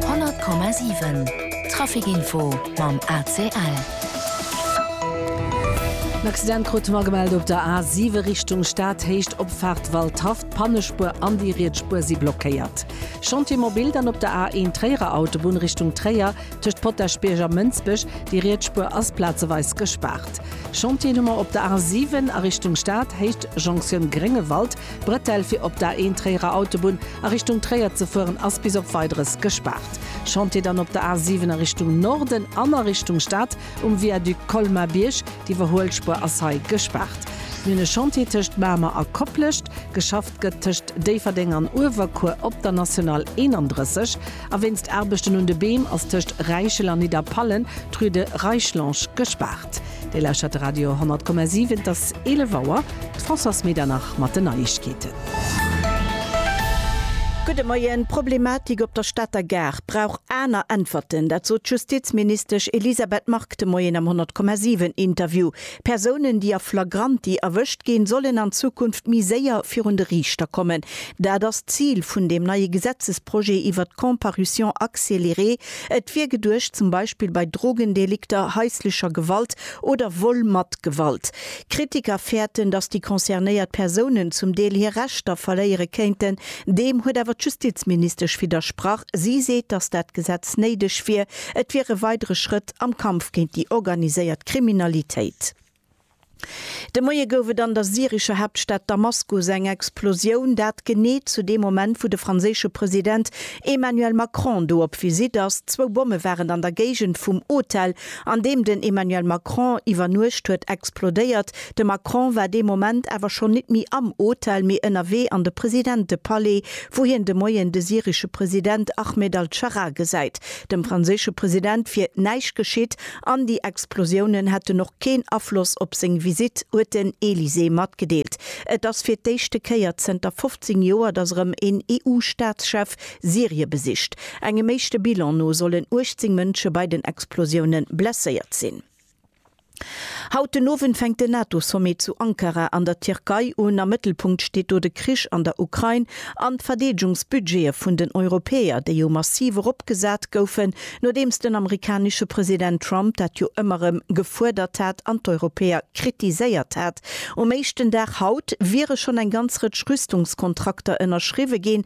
100,7 Trafic Info mam ACL. En Accident krute mer gemellt op der A7 Richtung Stad, Héicht Opfaart Waldhaff. D'Pannespuer an déi riets Spuer si blockéiert. Chantier mobil dann op der A1 Tréierer Autobunn Richtung Tréier tëscht Potaschbierg a Mënsbech. Déi riets Spuer ass plazeweis gespaart. Chantieren hu mer op der A7 a Richtung Stad, Héicht Jonction Gréngewald. D'Bretelle fir op der Ain-Tréierer Autobunn a Richtung Tréier ze fueren ass bis op Weideres gespaart. Chantier dann op der A7 a Richtung Norden an a Richtung Stad um Viaduc Colmar-Bierg, d'Iwwerhuelspuer ass hei gespaart. Mir hunn e Chantier tëscht Mamer a Koplescht. Geschafft gëtt tëscht Déifferdeng an Uewerkuer op der National 31. A wéinst Aarbechten un de Beem ass tëscht Räichel an Nidderpallen d'Rue de Reichlonge gespaart. Dir lauschtert de Radio 100,7, et ass 11 Auer. D'Françoise Medernach mat den Neiegkeeten. Gudde Moien. D'Problematik op der Stater Gare brauch aner Äntwerten, dat sot d'Justizministesch Elisabeth Margue de Moien am 100,7 Interview. Persounen, déi a flagranti erwëscht ginn, sollen an Zukunft méi séier virun de Riichter kommen. Dat ass d'Zil vun deem neie Gesetzesprojet iwwert d'Comparution accélérée. Et wier geduecht, zum Beispill bei Drogendelikter, haislecher Gewalt oder Vol mat Gewalt. Kritiker fäerten, datt déi concernéiert Persounen zum Deel hir Rechter verléiere kéinten. Deem huet awer d'Justizministesch widdersprach. Si seet, datt dat Gesetz néideg wier. Et wier e weidere Schrëtt. Kontakt am Kampf géint déi organiséiert Kriminalitéit. De Moie gouf et an der syrescher Haaptstad Damaskus eng Explosioun, dat genee zu deem Moment, wou de franséische President Emmanuel Macron do op Visitt ass. Zwou Bomme waren an der Géigend vum Hotel, an deem den Emmanuel Macron iwwernuecht huet, explodéiert. De Macron war dee Moment awer schonn nit méi am Hotel, mee ënnerwee an de Presidentepalais, wou hien de Moien de syresche President Ahmed al-Sharaa gesäit. Dem franséische President wier näischt geschitt an déi Explosiounen hätten och keen Afloss op seng Visitt, huet den Elysée matgedeelt. Et ass fir d'éischte Kéier zënter 15 Joer, datt erëm een EU-Staatschef Syrie besicht. Engem éischte Bilan no sollen 18 Mënsche bei den Explosioune blesséiert sinn. Haut den Owend fänkt den NATO-Sommet zu Ankara an der Tierkei un. Am Mëttelpunkt steet do de Krich an der Ukrain an d'Verdeedegungsbudgete vun den Europäer, déi jo massiv eropgesat goufen, nodeems den amerikanesche President Trump dat jo ëmmer erëm gefuerdert hat an d'Europäer kritiséiert hat. Um éischten Dag haut wiere schonn eng ganz Rëtsch Rüstungskontrakter ënnerschriwwe ginn,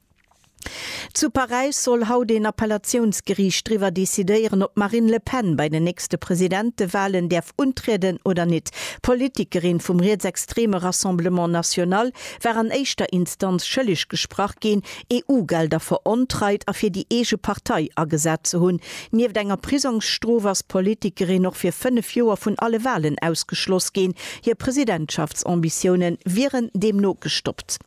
Zu Paräis soll haut een Appellatiounsgeriicht driwwer decidéieren, ob d'Marine Le Pen bei den nächste Presidentewalen däerf untrieden oder nit. D'Politikerin vum rietsextreme Rassemblement National war an éischter Instanz schëlleg gesprach ginn, EU-Gelder verontreit a fir déi eege Partei agesat ze hunn. Nieft enger Prisongsstrof ass d'Politikerin och fir fënnef Joer vun alle Walen ausgeschloss ginn. Hir Presidentschaftsambitioune wieren deemno gestoppt.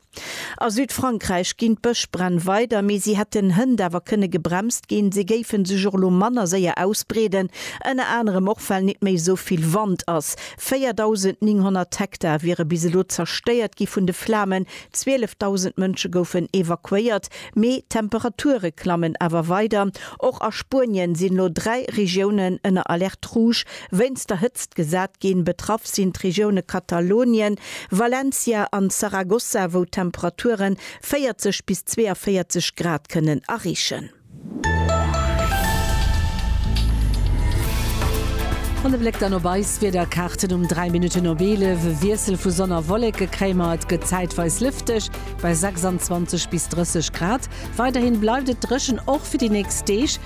A Südfrankräich ginn d'Bëschbränn weider, mee si hätten hënt awer kënne gebremst ginn. Si géife sech och elo manner séier ausbreeden, ënner anerem och well net méi esou vill Wand ass. 4.900 Hektar wiere bis elo zerstéiert gi vun de Flamen, 12.000 Mënsche goufen evakuéiert. Mee d'Temperature klammen awer weider. Och a Spuenien sinn elo dräi Regiounen ënner Alerte rouge, Wéinst der Hëtzt gesat ginn. Betraff sinn d'Regioune Katalounien, Valencia an Zaragoza, wou d'Temperature 40 bis 42 Grad kënnen areechen. An e Bléck dann op eis Wiederkaarten um 3 Minutten op 11. E Wiessel vu Sonn a Wolleke kréie mer. Et gëtt zäitweis lëfteg bei 26 bis 30 Grad. Weiderhi bleift et dréchen, och fir déi nächst Deeg.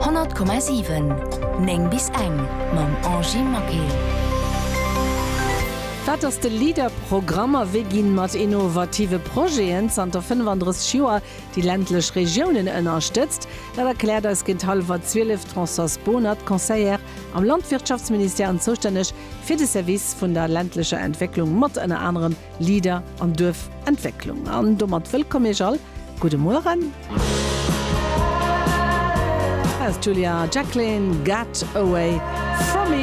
100,7 9 bis eng mam Angie Maquet. Wat ass de LEADER-Programm a wéi ginn mat innovative Projeten zanter 35 Joer déi ländlech Regiounen ënnerstëtzt? Dat erkläert eis géint hallwer 12 d'Françoise Bohnert, Conseillère am Landwirtschaftsministère an zoustänneg fir de Service vun der ländlecher Entwécklung, mat ënner anerem Leader an Duerfentwécklung. An domat wëllkomm Iech all. Gudde Mueren. Hei ass d'Julia Jacklin, Get Away From Me.